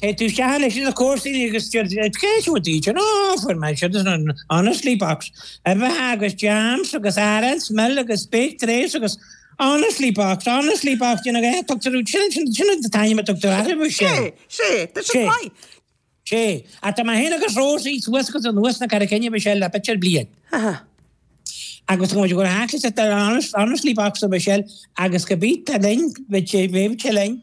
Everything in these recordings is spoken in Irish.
Téann tú isteach chuig na comharsaini agus deir siad, Céard iad iad sin? O, fuair mé siud as an Honestly Box. Uibheacha agus jams agus arán is mil agus speic drés agus Honestly Box, Honestly Box, déanfaidh é, tugtar iad, sin, sin, sin an t-ainm a tugtar orthu, is ea. Sé, sé, tá siad maith. Sé, ach tá mé féin agus Rosie suas agus anuas na Carraige Finne, bhí sé le fiche bliain. Agus tá muid ag dul thart ag an Honestly Box a Michelle agus go bit linn, bhí sé linn,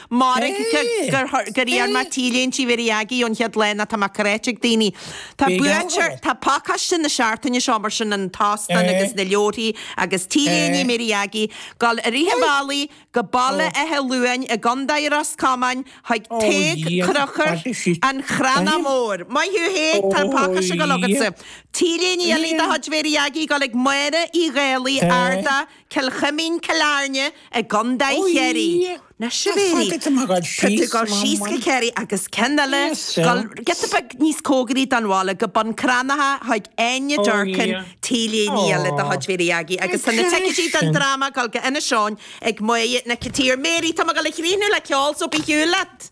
Mairg gur iarr mé T-léinte Mhéirí Aggie ón chéad lá nó tá mé cráite ag daoine. Tá buaiteoir, tá pacáiste na seachtaine seo mar sin an t-óstán agus na leabharthaí agus T-léine Mhéirí Aggie, ag dul i rith an bhealaigh go Baile Átha Luain i gContae Ros Comáin chuig Tadhg Crochúr an Chrannaigh Mór. Maith thú Thaidhg, tá an pacáiste ag gabháil chugatsa. T-léine eile de chuid Mhéirí Aggie, ag dul ag Máire Uí Dhálaigh, Ardagh. Cill Chuimín, Cill Airne i gContae Chiarraí. Ná sibh ar í! Tá sé ag dul síos go Ciarraí agus ceann eile ag gabháil giota beag níos cóngaraí don bhaile, go Bun Cranncha chuig Áine Durkin, T-léine eile de chuid Mhéirí Aggie, agus tá na ticéidí don dráma ag dul go Inis Eoghain ag Maigh Nic Tiarmhéirí. Tá mé ag dul a chríochnú le ceol so 'bé ar shiúl leat!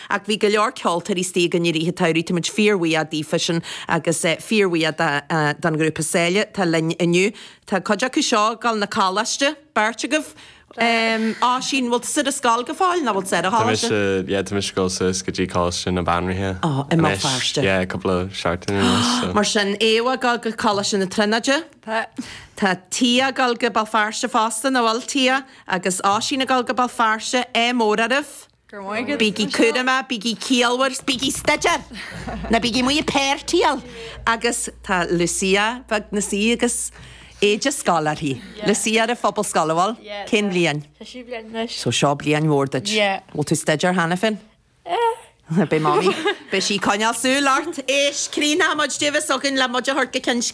Ach bhí go leor ceoltóirí istigh againn i rith an tsamhraidh, táimid fíorbhuíoch daofasan agus fíorbhuíoch don ghrúpa Saile atá linn inniu. Tá cuid acu seo ag dul na coláiste, beirt agaibh Oisín, bhfuil tú ar scoil go fóill nó bhfuil tú ag gabháil go coláiste? Tá mise, yeah, tá mise ag dul suas go dtí Coláiste na Banríona anois, yeah, cúpla seachtain anois, so. Mar sin, Aodh ag dul go Coláiste na Tríonóide. Tá. Tá Tia ag dul go Béal Feirste fosta, nó bhfuil Tia agus Oisín ag dul go Béal Feirste, ádh mór oraibh. Bígí cúramach, bígí ciallmhar 's bígí ag staidéar! Ná bígí amuigh ag péirtíáil! Agus tá Lucia bheag anseo agus éide scoile uirthi. Lucia ar an Phobalscoil, an bhfuil? Cén bhliain? An séú bliain anois. So seo bliain mhór duit. Yeah. Bhfuil tú ag staidéar cheana féin? Eh. Beidh Mamaí, beidh sí ag coinneáil súil ort! Éist, críochnóimid, Davis againn, le muid a thabhairt go ceann scríbe.